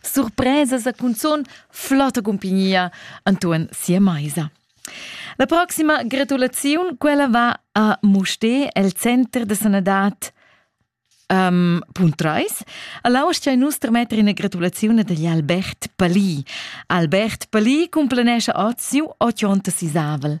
Surpresas e cunzun flotta cumpignia Anton sia maisa. La proxima gratulaziun, quella va a Musté, el center de sanadad um, Puntreis. All'austia nus tremetter ina gratulazione degli Albert Palì. Albert Palì cumplanesce oz siu 80 sisavel.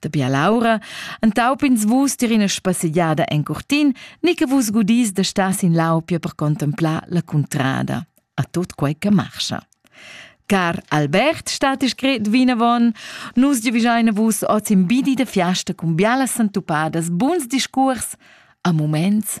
Da bialaura entaup'ins vus tier ina spassegiada en curtin, ni che vus gudis da star sin lau pia per contemplar la cuntrada, a tot quei che marscha. Car Albert stat scret vinavon, nus giuvischein vus oz in bidi da fiasta cun bialas santupadas, buns discurs, a moments